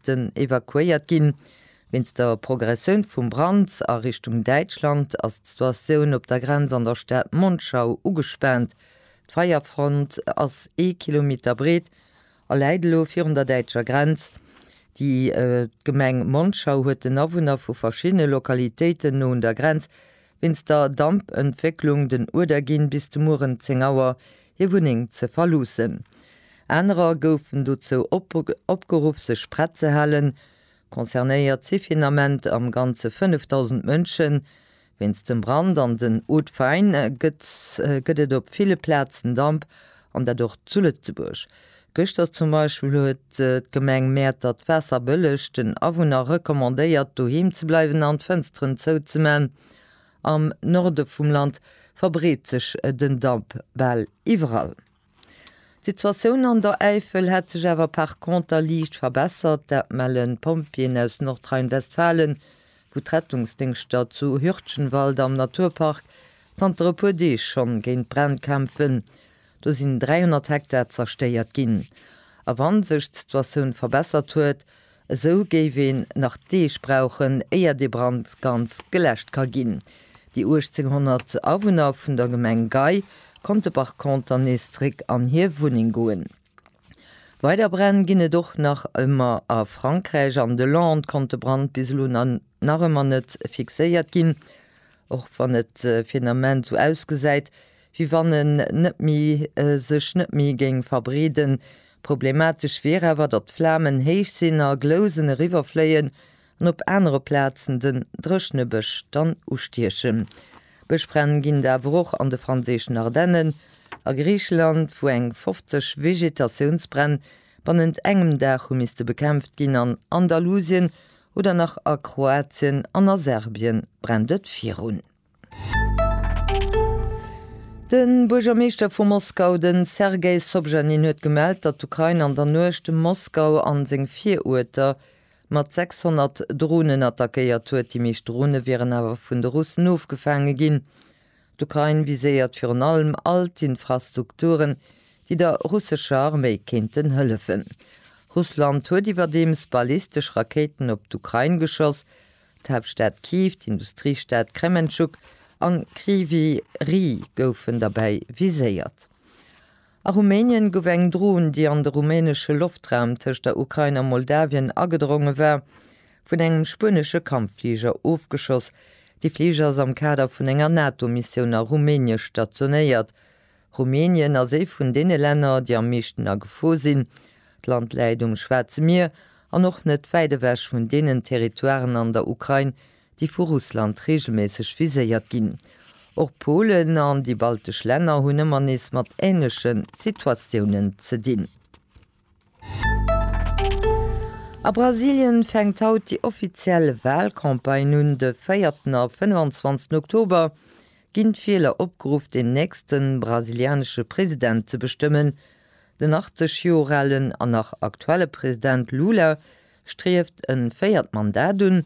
Sen evakuéiert ginn. Wéinst der Progressioun vum Brand a Richtung Däitschland ass d'Situatioun op der Grenz an der Stad Monschau ugespaant. D'Feierfront ass ee Kilometer breet a läit elo virun der däitscher Grenz. Déi Gemeng Monschau huet den Awunner vu verschiddene Lokalitéiten no un der Grenz Wéinst der Dampentwécklung den Uerder ginn, bis de Mueren 10 Auer hir Wunneng ze verloossen. Anerer goufen dozou opgeruff sech prett ze halen. Concernéiert si fir den Ament am Ganze 5.000 Mënschen. Wéinst dem Brand an den Hautes Fagnes gëtt et op ville Plazen Damp An dat och zu Lëtzebuerg. Gëschter zum Beispill huet d'Gemeng Mäertert d'Waasser bëlleg den Awunner recommandéiert, doheem ze bleiwen an d'Fënsteren zouzeman. Am Norde vum Land verbreet sech den Damp bal iwwerall. D'Situatioun an der Äifel hätt sech awer par conter liicht verbessert. Dat mellen d'Pompjeeën aus Nordrhein-Westfalen. wou d'Rettungsdéngschter zu Hürtgenwald am Naturpark zanter e puer Deeg schonn géint d'Bränn kämpfen. Do sinn 300 Hektar zerstéiert ginn. A wann sech d'Situatioun verbessert huet, esou géif een nach Deeg brauchen, éier de Brand ganz geläscht ka ginn. Déi 1.800 Awunner vun der Gemeng Gei konnte par conter nees zeréck an hir Wunneng goen. Weider Bränn ginn et och nach ëmmer a Frankräich. An de Landes konnt de Brand bis elo nach ëmmer net fixéiert ginn, och wann et fir den Ament esou ausgesäit, wéi wann en net méi sech net méi géing verbreeden. Problematesch wier awer, datt d'Flamen héich sinn a Glousen eriwwerfléien An op anere Plazen den dréchne Bësch dann ustiechen. Bëschbränn ginn et awer och an de franséischen Ardennen, a Griicheland, wou eng 50 Vegetatiounsbränn bannent engem Dag hu misste bekämpft ginn, an Andalusien oder nach a Kroatien an a Serbien brennt et virun. De Buergermeeschter vu Moskau, de Sergei Sobjanin huet gemellt, datt d'Ukrain an der Nuecht Moskau a seng Viruerter mat 600 Dronen attackéiert huet. Déi meescht Drone wieren awer vun de Russen ofgefaange ginn. D'Ukrain viséiert virun allem all d'Infrastukturen, déi der russescher Arméi kéinten hëllefen. Russland huet iwwerdeems ballistesch Rakéiten op d'Ukrain geschoss. D'Haaptstad Kyiv, d'Industriestad Krementschuk a Kryvyi Rih goufen derbäi viséiert. A Rumänien gouf eng Dron, déi an de rumänesche Loftraum tëscht der Ukrain a Moldawien agedronge war, vun engem spuenesche Kampffliger ofgeschoss. De Fliger ass am Kader vun enger NATO-Missioun a Rumänie stationéiert. Rumänien ass ee vun deene Länner, déi am meeschten a Gefor sinn. D'Land läit um Schwaarze Mier an och net wäit ewech vun deenen Territoiren an der Ukrain, déi vu Russland reegelméisseg viséiert ginn. Och Polen an déi baltesch Länner hunn ëmmer nees mat änleche Situatiounen ze dinn. A Brasilien fänkt haut déi offiziell Walcampagne un. De véierten a 25 Oktober ginn d'Wieler opgeruff, den nächste brasilianesche President ze bestëmmen. Den 80 Joer alen an nach aktuelle President Lula strieft e véiert Mandat un.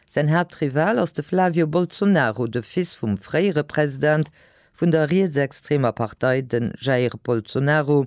Säin Haaptrival ass de Flavio Bolsonaro, de Fils vum fréiere President vun der rietsextremer Partei, de Jair Bolsonaro,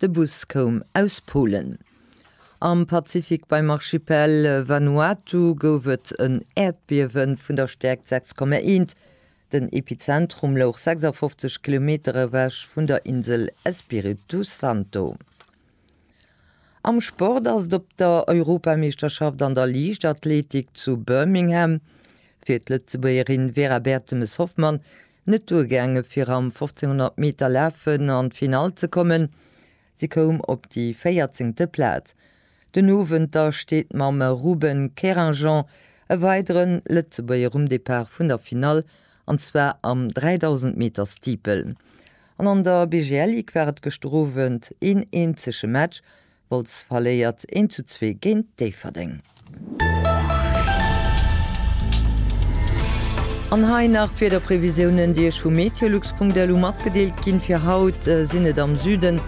De Bus koum aus Polen. Am Pazifik beim Archipel Vanuatu gouf et en Äerdbiewe vun der Stäerkt 6,1. Den Epizentrum louch 56 Kilometer ewech vun der Insel Espiritu Santo. Am Sport ass et op der Europameeschterschaft an der Liichtathletik zu Birmingham fir d'Lëtzebuergerin Vera Bertemes-Hoffmann net duergaange fir am 1500 Meter lafen an d'Finall ze kommen. Si koum op déi véierzéngte Plaz. Den Owend da steet mam Ruben Querinjean e weidere Lëtzebuerger um Depart vun der Finall, an zwar am 3000 Meter Steeple. An an der BGL-Ligue war et gëschter Owend een eenzege Match, Wolz verléiert 1 zu 2 géint Déifferdeng. An hei nach d'Wiederprevisiounen, déi Iech vu meteolux.lu matgedeelt ginn. Fir haut sinn et am Süden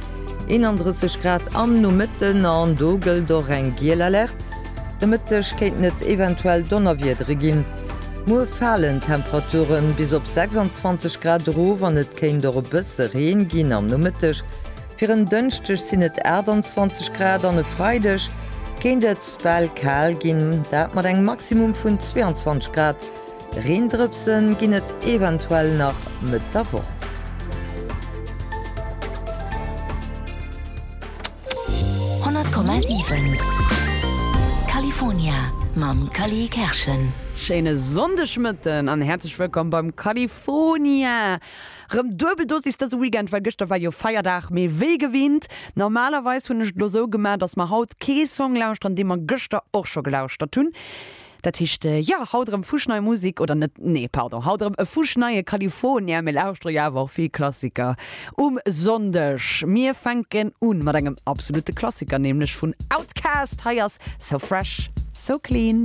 31 Grad am Nomëtten an do gëllt och eng giel Alerte. De Mëtteg kéinten et eventuell Donnerwiedere ginn. Muer falen d'Temperature bis op 26 Grad erof an et kéint och e bësse Reen ginn am Nomëtteg. Fir en Dënschdeg sinn et 28 Grad an e Freideg kéint et well kal ginn, dat mat engem Maximum vun 22 Grad. Reendrëpse ginn et eventuell nach Mëtt der Woch. Schéine Sonndegmëtten an häerzlech wëllkomm beim California! Rem duebel Dosis dëse Weekend, well gëschter war jo Feierdag, mee wéi gewinnt, normalerweis hunn ech et lo sou gemaach, dass mer haut kee Song lauschtern dee mer gëschter och scho gelauschtert hunn. Dat heescht jo, haut erëm fuschnei Musik, oder net, nee pardon, haut erëm e fuschneie California, mir lauschtere jo awer och vill Klassiker um Sonndeg. Mir fänken un mat engem absolute Klassiker, nämlech vun Outkast, hei ass So Fresh So Clean.